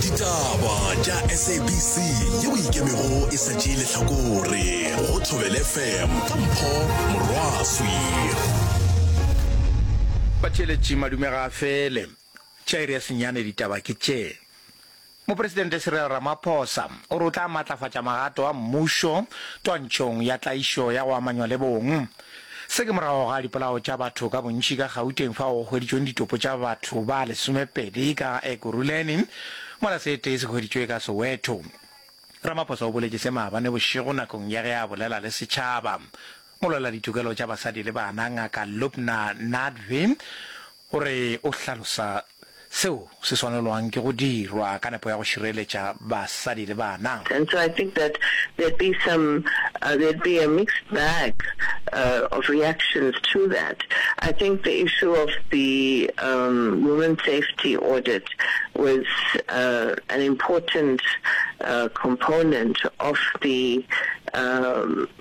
ditaba tša sabc yeo e ikemego e sa tšee lehlakore go thobel fm ka mpho morwaswi batšheletši madume ga a fele jairus nyane ditaba ke tše mopresidente cyril ramaphosa o re o tla matlafatša magato a mmušo twantšhong ya tlaišo ya go amanywa le bong Se ke morago ga dipolao tša batho ka bontši ka Gauteng fao go hweditšweng ditopo tša batho ba lesomepedi ka Ekurhuleni mola se tee se hweditšwe ka Soweto. Ramaphosa o boletše se maabane bošego nakong ya ge a bolela le setšhaba. Molweladitukelo tša basadi le bana Ngaka Lubna Nadvi O re o hlalosa seo se swanelwang ke go dirwa ka nepo ya go šireletša basadi le bana. And so I think that there'd be some there'd be a mixed bag of reactions to that. I think the issue of the women's safety audit was an important component of the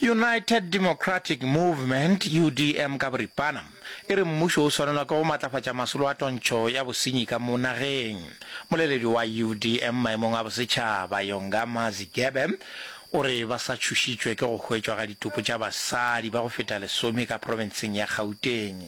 United Democratic Movement, UDM, ka boripana e re mmušo o swanelwa ke go matlafatša masolo a tontšho ya bosenyi ka mo nageng. Moleledi wa UDM maemong a bosetšhaba, Yongama Zigebe, o re ba sa tšhošitšwe ke go hwetšwa ga ditopo tša basadi ba go feta lesome ka profenseng ya Gauteng.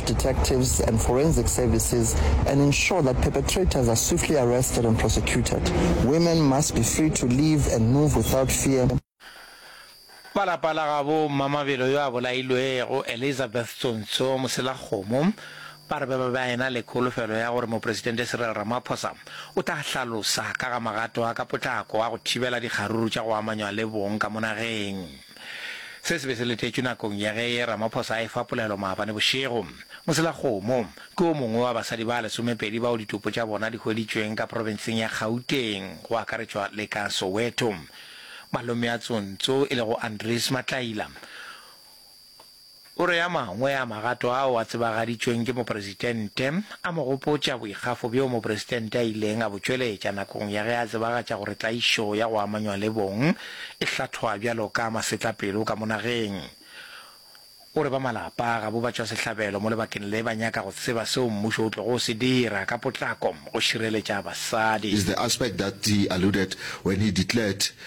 detectives and forensic services and ensure that perpetrators are swiftly arrested and prosecuted. Women must be free to live and move without fear. Ba lapa la gabo Mmamabelo yo a bolailwego, Elizabeth Tsontsho Moselakgomo, ba re ba be ba ena le kholofelo ya gore Mopresidente Cyril Ramaphosa o tla hlalosa ka ga magato a ka potlako a go thibela dikgaruru tša go amanywa le bong ka mo nageng. Se se be se letetšwe nakong ya ge Ramaphosa a efa polelo maabane bošego. Moselakgomo ke wo mongwe wa basadi ba lesomepedi bao ditopo tša bona di hweditšweng ka profenseng ya Gauteng go akaretšwa le ka Soweto. Malome a Tsontso e lego Andries Matlaila o. O re a mangwe a magato ao a tsebagaditšweng ke Mopresitente a mo gopotša boikgafo bjoo Mopresitente a ileng a bo tšweletša nakong ya ge a tsebagatša gore tlaišo ya go amanywa le bong e hlathwa bjalo ka masetlapelo ka mo nageng. O re ba malapa a gabo batšwasehlabelo mo lebakeng le ba nyaka go tseba seo mmušo o tlogo se dira ka potlako go šireletša basadi. is the aspect that he alluded when he declared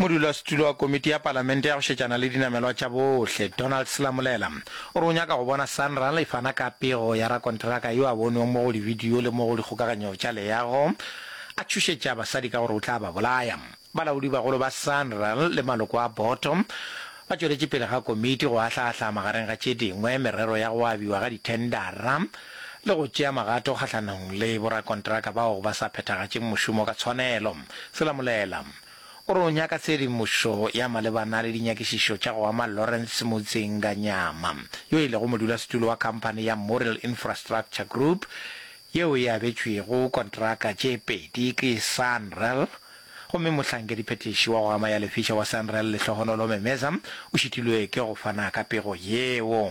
Modulasetulo wa Komiti ya Palamente ya go Šetšana le Dinamelwa tša Bohle, Donald Selamolela, o re o nyaka go bona Sanral e fana ka pego ya rakonteraka yo a bonwego mo go libidio le mo go dikgokaganyo tša leago a tšhošetša basadi ka gore o tla ba bolaya. Balaodibagolo ba Sanral le maloko a boto ba tšweletše pele ga komiti go ahla-ahla magareng ga tše dingwe merero ya go abiwa ga dithendara le go tšea magato kgahlanong le borakontraka bao ba sa phethagatšeng mošomo ka tshwanelo. Selamolela o re o nyaka tshedimošo ya malebana le dinyakišišo tša go ama Lawrence Mudzinganyama, yo e lego modulasetulo wa khamphani ya Morrill Infrastructure Group yeo e abetšwego kontraka tše pedi ke Sanral, gomme mohlankediphethiši wa go ama ya lefiša wa Sanral Lehlohonolo Memeza o šitilwe ke go fana ka pego yeo.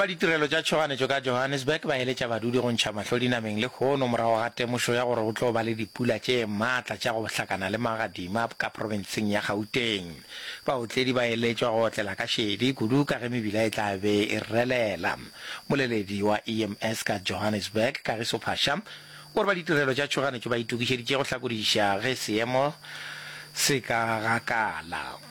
Ba ditirelo tša tšhoganetšo ka Johannesburg ba eletša badudi go ntšha mahlo dinameng lehono morago ga temošo ya gore go tlo ba le dipula tše matla tša go hlakana le magadima ka profenseng ya Gauteng. Baotledi ba eletšwa go otlela ka šedi kudu ka ge mebila e tla be e relela. Moleledi wa EMS ka Johannesburg, Kagiso Phasha, o re ba ditirelo tša tšhoganetšo ba itokišeditše go hlakodiša ge seemo se ka gakala.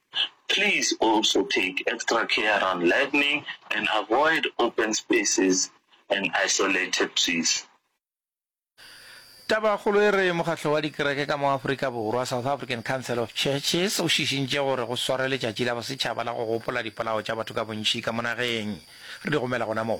Please also take extra care around lightning and avoid open spaces and isolated trees. Tabakgolo e re Mokgatlo wa Dikereke ka mo Afrika Borwa, South African Council of Churches, o šišintše gore go swarwe Letšatši la Bosetšhaba la go Gopola Dipolao tša Batho ka Bontši ka mo Nageng. Re di romela gona moo.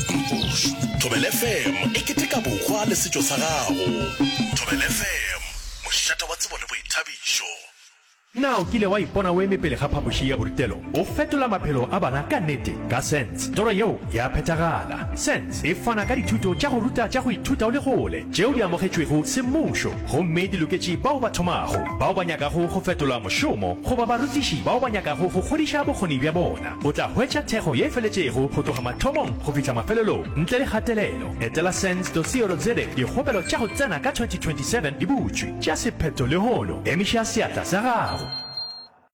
Push. Thobela FM e keteka bokgwa le setšo sa gago. Thobela FM, mošata wa tsebo le boithabišo. Na o kile wa ipona o eme pele ga phapoši ya borutelo? O fetola maphelo a bana ka nete ka Sense. Toro yeo ya phethagala. Sense e fana ka dithuto tša go ruta tša go ithuta o le kgole, tšeo di amogetšwego semmušo gomme di loketše bao ba thomago, bao ba nyakago go fetola mošomo goba barutiši bao ba nyakago go kgodiša bokgoni bja bona. O tla hwetša thekgo ye feletšego go tloga mathomong go fihla mafelelong ntle le kgatelelo. Etela sens.co.za Dikgopelo tša go tsena ka 2027 di butšwe. Tšea sephetho lehono. Emiša seatla sa gago.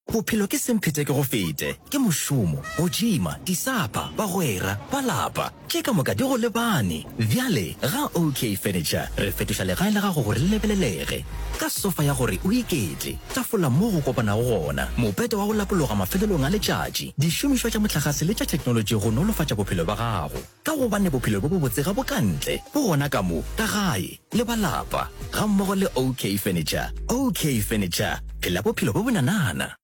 Bophelo ke semphetekegofete, ke mošomo, go džima, disapa, bagwera, ba lapa. Tše ka moka di go lebane. Bjale, ga OK Furniture, re fetoša legae la gago gore le lebelelege. Ka sofa ya gore o iketle, tafola moo go kopanago gona, mopete wa go lapologa mafelelong a letšatši, dišomišwa tša mohlagase le tša theknolotši go nolofatša bophelo bja gago. Ka gobane bophelo bjo bobotse ga bo ka ntle, bo gona ka mo, ka gae, le ba lapa, gammogo le OK Furniture. OK Furniture, phela bophelo bjo bonanana!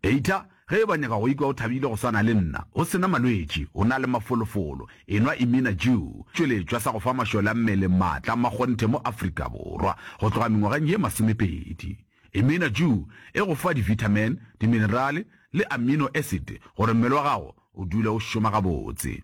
Eita, ge e ba nyaka go ikwa o thabile go swana le nna, o se na malwetši, o na le mafolofolo, enwa Imina Jew, tšweletšwa sa go fa mašole a mmele maatla a makgonthe mo Afrika Borwa go tloga mengwageng ye masomepedi. Imina Jew e go fa divithamin, diminerale le amino acid gore mmele wa gago o dule o šoma gabotse.